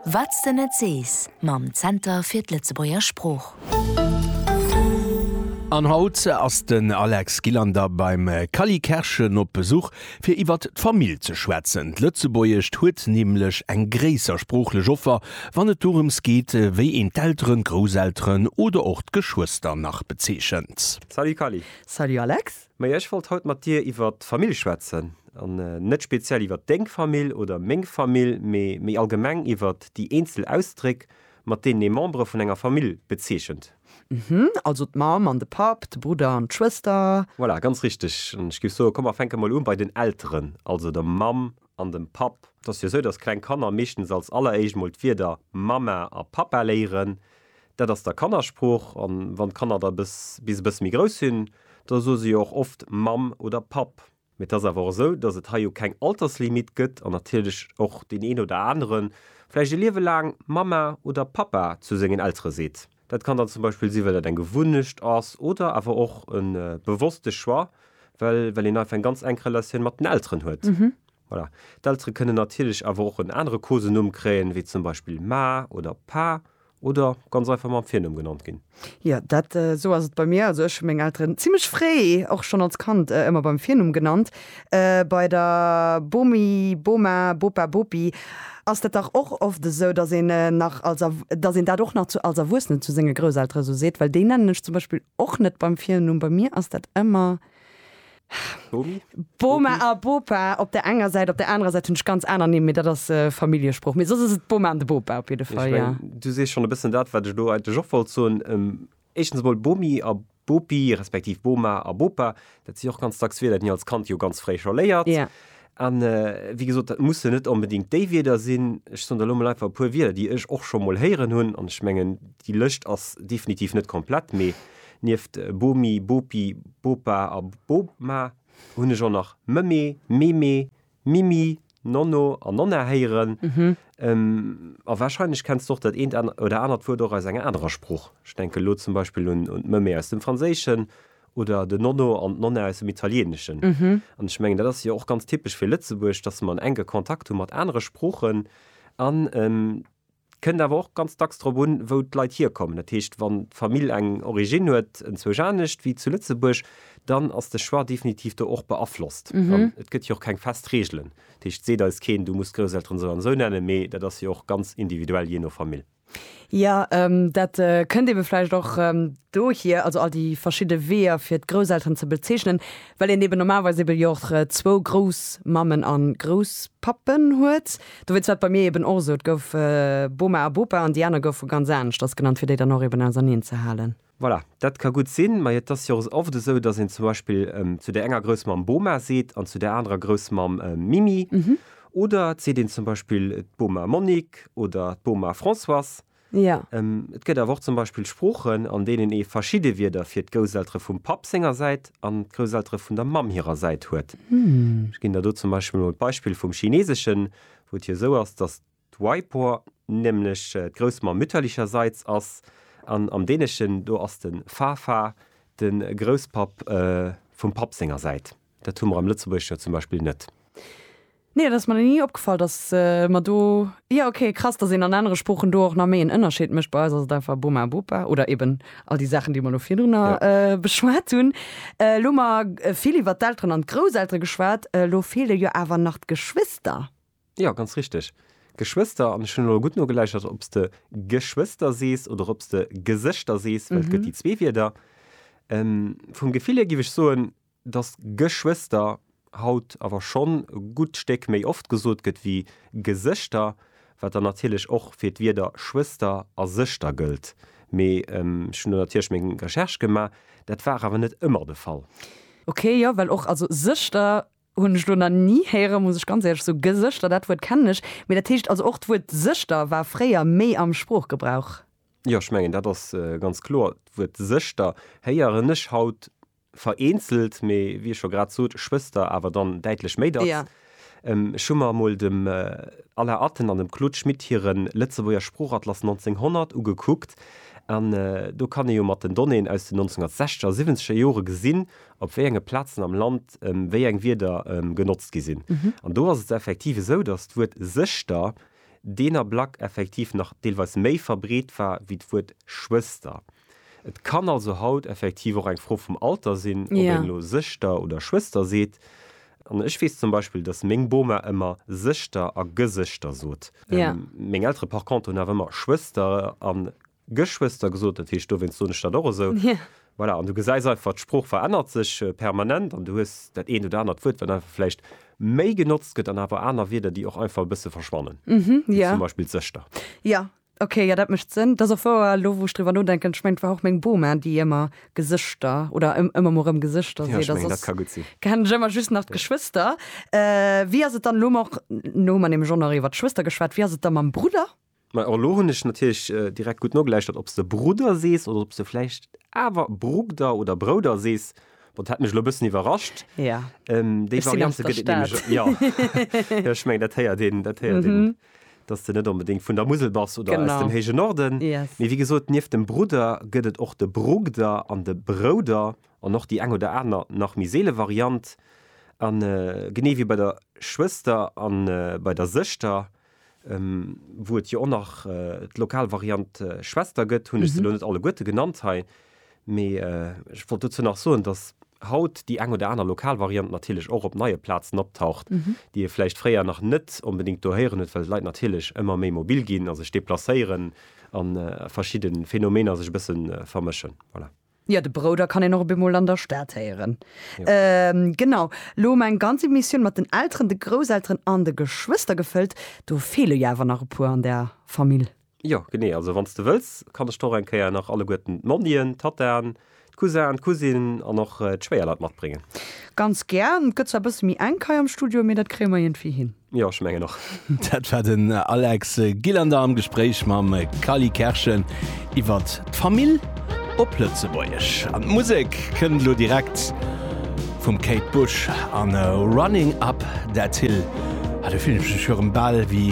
Wat s de net sees mam Zenter fir d'Lëtzebuerger Sprooch. An haut ass den Alex Gillander beim Cally Kerschen op Besuch fir iwwert d'Famill ze schwätzen. D'Lëtzebuergescht huet nämlech eng gréisser sproochlech Offer wann et dorëms geet wéi een d'Elteren, d'Grousselteren oder och d'Geschwëster nach bezeechent. Salut Cally! Salut Alex! Maja, ech wollt haut mat dir iwwert d'Famill schwätzen. An net speziell iwwert deng Famill oder meng Famill, mee méi allgemeng iwwert déi eenzel Ausdréck, mat deenen ee Membere vun enger Famill bezeechent. Hm, also d'Mamm an de Papp, de Brudder an d'Schwëster. Voilà, ganz richteg. An ech géif soen, komm, mer fänke mol u bei den Elteren, also der Mamm an dem Papp. Et ass jo esou, dass kleng Kanner meeschtens als alleréischt mol d'Wierder Mamma a Pappa léieren, Dat ass da Kannersprooch. An wann d'Kanner da bis e bësse méi grouss sinn, da soe se jo och oft Mamm oder Papp. Mee et ass awer och esou, dass et hei jo keng Alterslimite gëtt an natierlech och deen een oder anere vläicht e Liewe laang Mamma oder Pappa zu sengen Eltere seet. Dat kann dann zum Beispill sinn, well dat eng Gewunnecht ass oder awer och e bewosste Choix, well een einfach eng ganz enk Relatioun mat den Elteren huet. Voilà. D'Eltere kënnen natierlech awer och en anere Kosenumm kréien, wéi zum Beispill Ma oder Pa, oder ganz einfach mam Virnumm genannt ginn. Jo, dat esou ass et bei mir. Also ech hu meng Elteren zimmlech fréi, och schonn als Kand, ëmmer beim Virnumm genannt. Bei der Bomi, Boma, Bopa, Bopi ass dat dach och oft esou, datt een nach als Er, datt een dat och nach zu, als Erwuessenen zu senge Grousseltere esou seet, well déi nennen ech zum Beispill och net beim Virnumm. Bei mir ass dat ëmmer Bomi? Boma a Bopa op der enger Säit, op der anerer Säit hunn ech ganz aner Nimm, mee dat ass Familljesprooch. Mee soss ass et d'Boma an de Bopa op jidde Fall, jo. Du sees schonn e bëssen dat, wat ech do eigentlech och wollt soen. Éischtens emol, Bomi a Bopi, respektiv Boma a Bopa, dat si och ganz dacks Wierder, déi een als Kand jo ganz fréi scho léiert. Jo. A wéi gesot, dat mussen net onbedéngt déi Wierder sinn. Ech soen der elo emol einfach e puer Wierder, déi ech och scho mol héieren hunn. An ech mengen, déi Lëscht ass definitiv net komplett, mee Nieft Bomi, Bopi, Bopa a Boma hunn ech och nach Mëmme, Meme, Mimi, Nonno a Nonna héieren. A warscheinlech kenns de och dat eent oder anert Wuert och aus enger anerer Sprooch. Ech denken elo zum Beispill un d'Mëmme aus dem Franséischen oder den Nonno an d'Nonna aus dem Italieneschen. An ech mengen, dat ass jo och ganz typesch fir Lëtzebuerg, dass mer en enke Kontakt hu mat anere Sproochen an. Et kënnt awer och ganz dacks drop un, wou d'Leit hierkommen. Dat heescht, wann d'Famill eng Originn huet, enzwousch anescht wéi zu Lëtzebuerg, dann ass de Choix definitiv do och beaflosst. An et gëtt jo och keng fest Reegelen. Dat heescht, et seet eis keen, du muss d'Grousselteren esou an esou nennen, mee dat ass jo och ganz individuell jee no Famill. Jo, dat kënnt eebe vläicht och dohier, also all déi verschidde Weeër, fir d'Grousselteren ze bezeechnen, well een eeben normalerweis eebe jo och zwou Groussmammen a Grousspappen huet. Dowéinst war et bei mir eben och esou, et gouf Boma a Bopa an déi aner goufe ganz anescht, dat ass genannt, fir déi dann och eben auserneen ze halen. Voilà, dat ka gutt sinn, mä et ass jo och oft esou, datt een zum Beispill zu där enger Groussmamm Boma seet an zu där anerer Groussmamm Mimi. Oder et seet een zum Beispill d'Boma Monique oder d'Boma Françoise. Jo. Et gëtt awer och zum Beispill Sproochen, an deenen ee verschidde Wierder fir d'Gousseltere vum Papp senger Säit an d'Gousseltere vun der Mamm hirer Säit huet. Ech ginn der do zum Beispill emol d'Beispill vum Chineeseschen, wou et jo esou ass, dass d'Waipo nämlech d'Groussmamm mütterlicherseits ass, an am Däneschen do ass de Farfar de Grousspapp vum Papp senger Säit. Dat hu mer am Lëtzebuergesch jo zum Beispill net. Nee, et ass mer nach ni opgefall, datt mer do, jo ok, krass, datt een an anere Sproochen do och nach méi en Ënnerscheed mécht. Bei eis ass et einfach Boma a Bopa oder eben all déi Saachen, déi mer elo virdrunner beschwat hunn. Elo hu mer vill iwwert d'Elteren an d'Grousseltere geschwat, elo feele jo awer nach d'Geschwister. Jo, ganz richteg, Geschwister. An ech hunn elo gutt nogeläichert, ob s de Geschwister sees oder ob s de Gesëschter sees, well et gëtt déi zwee Wierder. Vum Gefill hier giff ech soen, Dass Geschwëster haut awer schonn e gutt Stéck méi oft gesot gëtt wéi Gesëschter, wat dann natierlech och fir d'Wierder Schwëster a Sëschter gëllt. Mee ech hunn do natierlech meng Recherche gemaach, dat war awer net ëmmer de Fall. Ok, jo, well och, also Sëschter hunn ech elo nach ni héieren, muss ech ganz éierlech soen. Gesëschter, dat Wuert kennen ech. Mee dat heescht also och d'Wuert Sëschter war fréier méi am Sproochgebrauch? Jo, ech mengen dat ass ganz kloer. D'Wuert Sëschter héieren ech haut Vereenzelt, mee wéi ech scho grad sot, Schwëster awer dann däitlech méi dacks. Jo. Ech hu mer emol dem Alain Atten an dem Claude Schmit hire Lëtzebuerger Sproochatlas 1900 ugekuckt an do kann ee jo mat den Donnéeën aus den 1960 a 70er Jore gesinn, op wéi enge Plazen am Land wéi eng Wierder genotzt gi sinn. An do ass et effektiv esou, datt d'Wuert Sëschter deen Ablack effektiv nach deelweis méi verbreet war wéi d'Wuert Schwëster. Et kann also haut effektiv och eng Fro vum Alter sinn, ob een elo Sëschter oder Schwëster seet. An ech weess zum Beispill, dass meng Boma ëmmer Sëschter a Gesëschter sot. Meng Eltere par contre hunn awer ëmmer Schwëster a Geschwëster gesot, dat heescht dowéinst soen ech dat och esou. Voilà, an du gesäis einfach, d'Sprooch verännert sech permanent an du hues dat eent oder anert Wuert, wat einfach vläicht méi genotzt gëtt an awer aner Wierder, déi och einfach e bësse verschwannen, wéi zum Beispill d'Sëschter. Ok, jo dat mecht Sënn. T'ass och wouer, elo wou ech driwwer nodenken, ech mengen et war och meng Boma déi ëmmer Gesëschter oder ëmmer mol rëm Gesëschter seet a soss kennen ech ëmmer just nach d'Geschwëster. Wéi ass et dann, elo hunn mer nämlech och nach iwwer d'Schwëster geschwat, wéi ass et da mam Brudder? Majo elo hunn ech natierlech direkt gutt nogeläuschtert ob s de Brudder sees oder ob s de vläicht awer Brugder oder Brouder sees. Bon, dat hat mech elo e bëssen iwwerrascht. Déi Variante gëtt et nämlech och. Jo, ech mengen dat héiert een, dat héiert een dass de net onbedéngt vun der Musel bass oder aus dem héije Norden. Mee wéi gesot, nieft dem Brudder gëtt et och de Brugder an de Brouder an och déi eng oder aner nach méi seele Variant. A genee wéi bei der Schwëster a bei der Sëschter, wou et jo och nach d'lokal Variant Schwester gëtt, hunn ech se elo net alleguerte genannt hei, Mee ech wollt dozou nach soen, dass haut déi eng oder aner lokal Variant natierlech och op neie Plazen optaucht, déi ee vläicht fréier nach net onbedéngt do héieren huet, well d'Leit natierlech ëmmer méi mobil ginn a sech deplacéieren a verschidde Phänomener sech e bësse vermëschen. Voilà. Jo, de Brouder kann een och op eemol an der Stad héieren. Genau. Elo hu mer eng ganz Emissioun mat den Elteren, de Grousselteren an de Geschwëster gefëllt. Do feele jo awer nach e puer an der Famill. Jo, genee. Also wann s de wëlls, kann ech der och eng Kéier nach alleguerten d'Monnien, d'Tattaen, d'Cousin, d'Cousine an och d'Schwéierleit matbréngen. Ganz gär. Et gëtt zwar e bësse méi enk hei am Studio, mee dat kréie mer iergendwéi hin. Jo, ech mengen och. Dat war den Alex Gillander am Gespréich mam Kally Kerschen iwwer d'Famill op Lëtzebuergesch. An d'Musek kënnt elo direkt vum Kate Bush an Running Up That Hill. Ah, do fillen ech mech jo erëm bal ewéi.